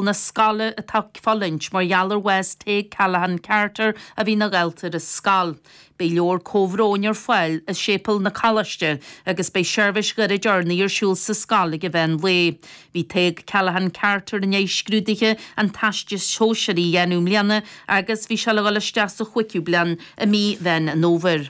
na scoile atá fulaingt mar gheall ar bhás Tadhg Callaghan Carter a bhí ina dhalta ar an scoil. Beidh leabhar comhbhróin ar fáil i Séipéal an Choláiste agus beidh seirbhís ghairid urnaí ar siúl sa scoil ag meán lae. Bhí Tadhg Callaghan Carter i ndiaidh scrúduithe an Teastais Shóisearaigh a dhéanamh i mbliana agus bhí sé le dhul isteach sa chúigiú bliain i mí Mheán an Fhómhair.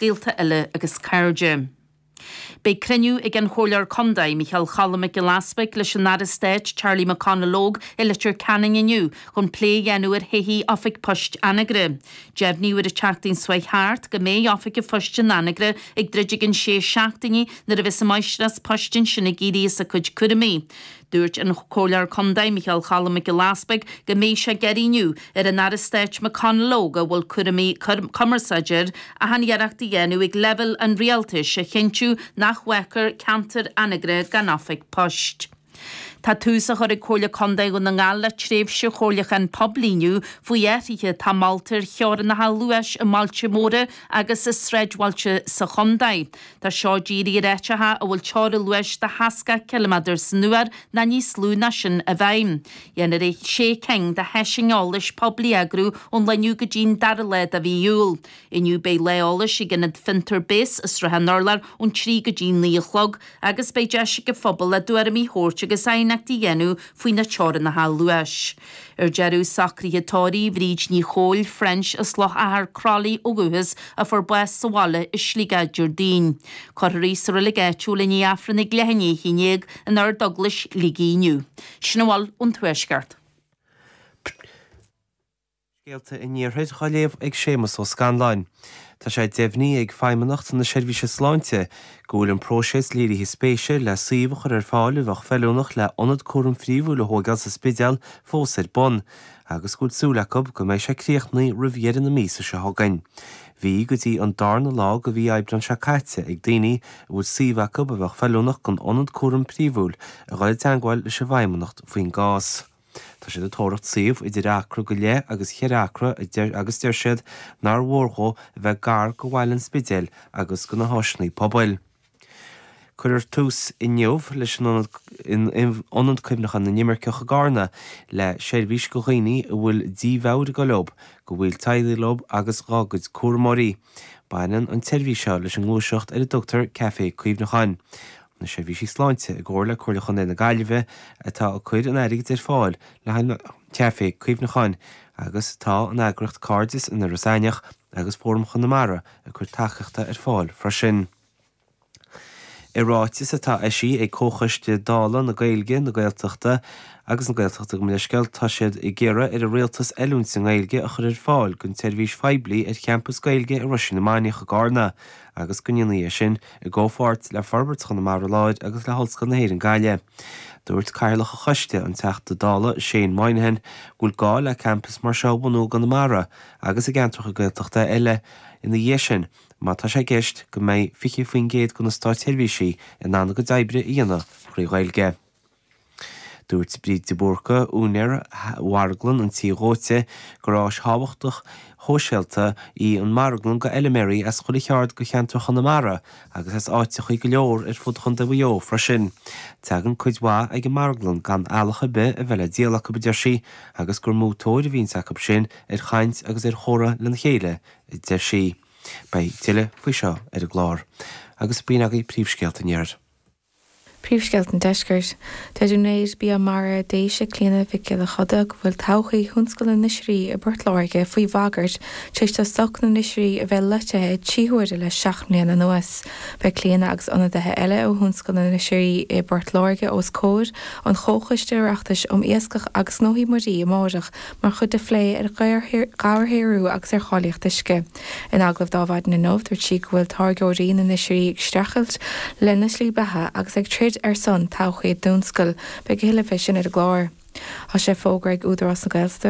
dhaltaí eile agus cairde. Beidh cruinniú ag an Chomhairleoir Contae, Micheál Cholm Mac Giolla Easbuig leis an Aire Stáit, Charlie McConalogue i Leitir Ceanainn inniu chun plé a dhéanamh ar thodhchaí Oifig Poist Anagaire. Deimhníodh ar an tseachtain seo thart go mbeidh Oifig an Phoist in Anagaire ag druid i gceann sé seachtainí nuair a bheas an Máistreás Poist ansin ag éirí as a cuid cúramaí. Dúirt an Comhairleoir Contae Micheál Cholm Mac Giolla Easbuig go mbeidh sé ag achainí ar an Aire Stáit McConalogue a bhfuil cúraimí cumarsáide air achan iarracht a dhéanamh ag leibhéal an Rialtais a chinntiú nach bhfágfar ceantar Anagaire gan oifig poist. Tá tús á chur ag Comhairle Contae Dhún na nGall le tréimhse chomhairliúcháin poiblí inniu faoi athruithe atá molta ar theorannacha luais i mbailte móra agus i sráidbhailte sa chontae. Tá seo dírithe ar áiteacha a bhfuil teora luais de sheasca ciliméadar san uair ná níos lú ná sin i bhfeidhm. Déanfar sé cinn de sheisiúin eolais poiblí a eagrú ón lá inniu go dtín dara lá de mhí Iúil. Inniu beidh lá eolais ag Ionad Fiontar Base i Srath an Urláir ón trí go dtín naoi a chlog agus beidh deis ag an phobal a dtuairimí a thabhairt agus aighneachtaí a dhéanamh faoi na teorannacha luais. Ar deireadh, socraithe tórraimh Bhríd Nic Cumhaill, French, as Loch Achair, Croithlí ó dhúchas, a fuair bás sa bhaile i Sligeach Déardaoin. Cuirfear í sa reilig áitiúil i ndiaidh Aifreann a leath i ndiaidh a haon dhéag in Ard-Eaglais Shligigh inniu. Sin a bhfuil ón Tuaisceart. Scéalta an Iarthair dhá léamh ag Séamas Ó Scanláin. Tá sé deimhnithe ag Feidhmeannacht na Seirbhíse Sláinte go bhfuil an próiseas léirithe spéise le suíomh a chur ar fáil a bheadh feiliúnach le hIonad Cúraim Phríomhúil a thóigeáil sa Spidéal fós ar bun agus go bhfuil súil acu go mbeidh sé críochnaithe roimh dheireadh na míosa seo chugainn. Bhí go dtí an darna lá de mhí Aibreán seo caite ag daoine a bhfuil suíomh acub a bheadh feiliúnach don Ionad Cúraim Phríomhúil a dhul i dteangmháil leis an bhFeidhmeannacht faoin gcás. Tá siad ag tóraíocht suíomh idir acra go leith agus cheithre acra agus deir siad nár mhór dhó a bheith gar go bhaile an Spidéil agus go na háiseannaí pobail. Cuirfear tús inniu leis in Ionad Cuimhneacháin na nImirceach i gCarna le seirbhís do dhaoine a bhfuil dímheabhair ag gabháil dóibh, dá dteaghlaigh, leob agus dá gcuid cúramóirí. Baineann an tseirbhís seo leis an ngluaiseacht ar a dtugtar Café Cuimhneacháin. na Seirbhísí Sláinte, i gcomhar le Comhairle Chontae na Gaillimhe, atá ag cuir an airgid ar fáil le haghaidh na Caifé Cuimhneacháin agus tá an eagraíocht Cairdeas in Iorras Aithneach agus Fóram Chonamara ag cuir tacaíochta ar fáil freisin. I ráiteas atá eisithe ag Comhchoiste Dála na Gaeilge, na Gaeltachta agus na Gaeltachta gabh mo leithscéal, tá siad ag iarraidh ar an Rialtas oiliúint sa nGaeilge a chur ar fáil don tseirbhís phoiblí ar champas Gaeilge i Roisín na Mainiach i gCarna agus go ndéanfaí é sin i gcomhpháirt le Forbairt Chonamara Láir agus le hOllscoil na hÉireann Gaillimh. Dúirt Cathaoirleach an Choiste, an Teachta Dála Shane Moynihan, go bhfuil gá le campas mar seo a bhunú i gConamara agus i gceantracha Gaeltachta eile ina dhiaidh sin má tá sé i gceist go mbeidh 20% de na státseirbhísigh in ann a gcuid oibre a dhéanamh trí Ghaeilge. Dúirt Bríd de Búrca, úinéir Mharglann an Tí Dhóite, gur áis thábhachtach shóisialta í an Marglann d'fheiliméaraí as chuile cheaird de cheantar Chonamara agus as áiteachaí go leor ar fud Chontae Mhaigh Eo freisin. Teagann cuid mhaith ag an Marglann gan eallach ar bith a bheith le díol acu, a deir sí, agus gur mó tóir a bhíonns acu sin ar chaint agus ar chomhrá lena chéile, a deir sí. Beidh tuilleadh faoi seo ar an gclár. Agus b'in agaibh príomhscéalta an Iarthair. Príomhscéalta an Deiscirt. Deir úinéir Bia Mara Déise, Clíona Mhic Giolla Choda, go bhfuil todhchaí thionscal na n-oisrí i bPort Láirge faoi bhagairt tar éis do stoc na n-oisrí a bheith loitithe trí huaire le seacht mbliana anuas. Beidh Clíona agus ionadaithe eile ó thionscal na n-oisrí i bPort Láirge os comhair an Chomhchoiste Oireachtais um Iascach agus Gnóthaí Muirí amárach mar chuid de phlé ar dhobharshaothrú agus ar cháilíocht uisce. In agallamh linn maidin inniu, dúirt sí go bhfuil táirgeoirí na n-oisrí ag streachailt lena slí beatha agus ag troid ar son todhchaí a dtionscail. Beidh a thuilleadh fé sin ar an gclár. Tá sé fógartha ag Údarás na